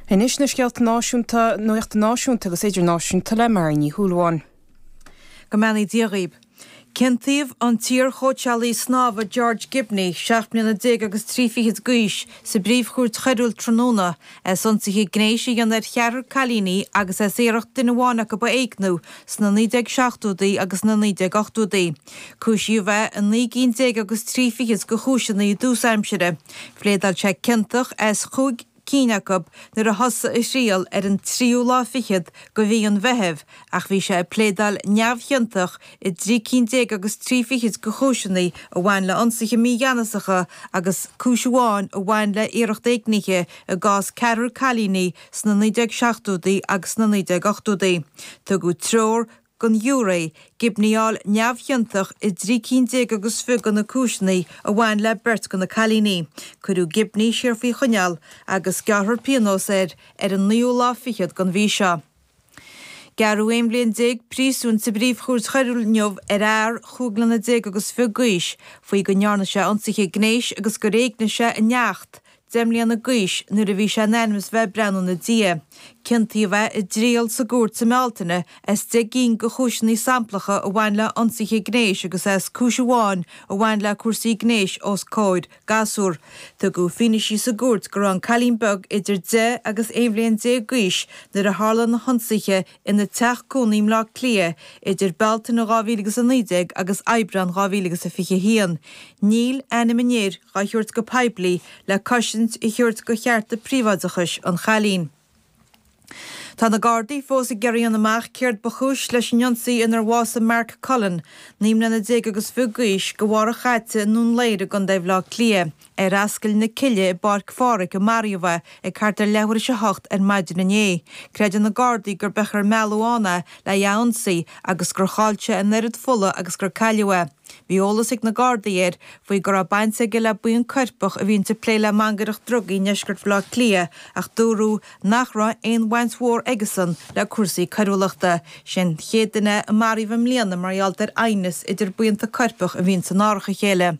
Anois na scéalta náisiúnta nuachta, náisiúnta agus idirnáisiúnta le Marion Ní Shúilleabháin. Go mbeannaí Dia dhaoib. Ciontaíodh an t-iar-chóitseálaí snámha George Gibney, seacht mbliana déag agus trí fichid d'aois, sa bPríomhchúirt Choiriúil tráthnóna, as ionsaithe gnéis a dhéanamh ar cheathrar cailíní agus as iarracht duine amháin acu a éigniú sna 1970idí agus na 1980idí. Cúisíodh é i naoi gcinn déag agus trí fichead de chúiseanna i dtús aimsire. Phléadáil sé ciontach as chúig cinn acu nuair a thosaigh a thriail ar an tríú lá fichead de mhí an Mheithimh ach bhí sé ag pléadáil neamhchiontach i dtrí cinn déag agus trí fichead de chúiseanna a bhain le hionsaithe mígheanasacha agus cúis amháin a bhain le iarracht éignithe i gcás ceathrar cailíní sna 1970idí agus sna 1980idí. Tugadh treoir don ghiúiré Gibney a fháil neamhchiontach i dtrí cinn déag agus fiche de na cúiseanna a bhain le beirt de na cailíní. Cuireadh Gibney siar faoi choinneáil agus gearrthar pionós air ar an naoú lá fichead den mhí seo. Gearradh aon bhliain déag príosúin sa bPríomh-Chúirt Choiriúil inniu ar fhear chúig bliana déag agus fiche d'aois faoi go ndearna sé ionsaithe gnéis agus gur éignigh sé a neacht, Deich mbliana d'aois, nuair a bhí sé in ainm is a bheith ag breathnú ina diaidh, ciontaíodh é i dtriail sa gcúirt sa mBealtaine as deich gcinn de chúiseanna samplacha a bhain le hionsaithe gnéis agus as cúis amháin a bhain le cúrsaí gnéis os comhair gasúr. Tugadh fianaise sa gcúirt go raibh an cailín beag idir deich agus aon bhliain déag d'aois nuair a tharla na hionsaithe ina teach cónaí i mBleá Cliath idir Bealtaine 2019 agus Aibreán 2021. Níl ainm an fhir á thabhairt go poiblí le cosaint a thabhairt do chearta príobháideachais an chailín. Tá na Gardaí fós ag iarraidh a fháil amach céard ba chúis leis an ionsaí inar bhásaigh Mark Cullen, naoi mbliana déag agus fiche d'aois, de bharr a sháite i nDún Laoghaire i gContae Bhleá Cliath. Ar Ascaill na Cille i bPáirc Pháraic a maraíodh é, ag thart ar leathuair tar éis a hocht ar maidin inné. Creideann na Gardaí gurb amhlaidh ar mealladh ann é lena ionsaí agus gur chaill sé an oiread fola agus gur cailleadh é. Bhí eolas ag na Gardaí air faoi go raibh baint aige le buíon coirpeach a bhíonns ag plé le mangaireacht drugaí i ndeisceart Bhaile Átha Cliath ach dúradh nach raibh aon bhaint mhór aige-san le cúrsaí coiriúlachta. Sé an chéad duine é a maraíodh i mbliana mar gheall ar aighneas idir buíonta coirpeach a bhíonns in árach a chéile.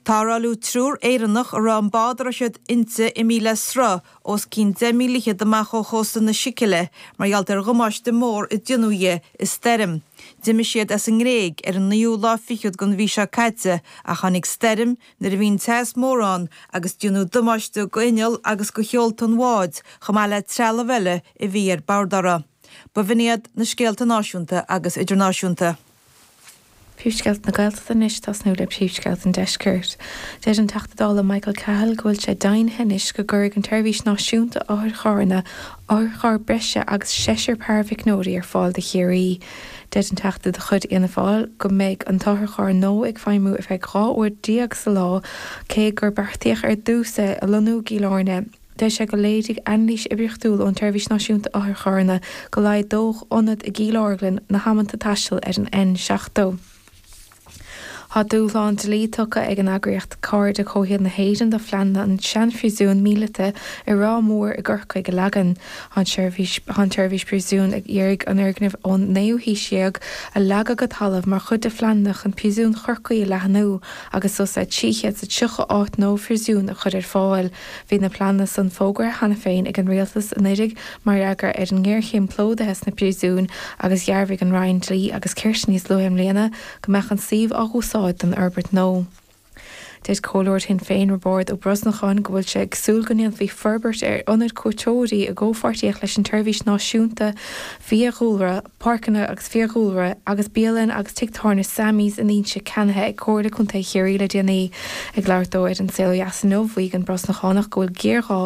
Tarrtháladh triúr Éireannach a raibh an bád a raibh siad inti imithe le sruth os cionn 10 míle fichead amach ó chósta na Sicile mar gheall ar dhamáiste mór a déanadh dhi i stoirm. D'imigh siad as an nGréig ar an naoú lá fichead den mhí seo caite ach tháinig stoirm nuair a bhí an teas mór ann agus déanadh damáiste do inneall agus do sheolta an bháid chomh maith le trealamh eile a bhí ar bord. Dara, ba in iad na scéalta náisiúnta agus idirnáisiúnta. Príomhscéalta na Gaeltachta Anois tosnú le príomhscéalta an Deiscirt. Deir an Teachta Dála Michael Cahill go bhfuil sé deimhnithe anois go gcuirfidh an tSeirbhís Náisiúnta Otharcharranna otharcharr breise agus seisear paraimhicneoirí ar fáil do Chiarraí. Deir an Teachta de chuid Fhianna Fáil go mbeidh an t-otharcharr nua ag feidhmiú ar feadh 12 uair sa lá cé gur beartaíodh ar dtús é a lonnú i gCill Airne. Deir sé gur léirigh anailís oibríochtúil ón tSeirbhís Náisiúnta Otharcharranna go laghdódh ionad i gCill Orglan na hamanta taistil ar an N70. Tá dúshlán dlí tugtha ag an eagraíocht Cairde Comhshaoil na hÉireann do phleananna an seanphríosún míleata i Ráth Mór i gCorcaigh a leagan. Tá an tSeirbhís Príosún ag iarraidh an foirgneamh ón naoú haois déag a leagan go talamh mar chuid de phleananna chun Príosún Chorcaí a leathnú agus suas le 330 áit nua príosúin a chur ar fáil Bhí na pleananna san fógartha cheana féin ag an Rialtas anuraidh mar fhreagra ar an ngéarchéim plódaithe sna príosúin agus dhearbhaigh an Roinn Dlí agus Cirt níos luaithe i mbliana go mbeadh an suíomh á úsáid don fhorbairt nua. Deir Comhairleoir Shinn Féin Roibeárd Ó Brosnacháin go bhfuil sé ag súil go ndéanfaí forbairt ar ionad cuairteoirí i gcomhpháirtíocht leis an tSeirbhís Náisiúnta Fiadhúlra, Páirceanna agus Fiadhúlra agus bialann agus tigh tábhairne Sammy's in Inse ceannaithe ag Comhairle Contae Chiarraí le déanaí. Ag labhairt dó ar An Saol Ó Dheas inniu, mhaígh an Brosnachánach go bhfuil géarghá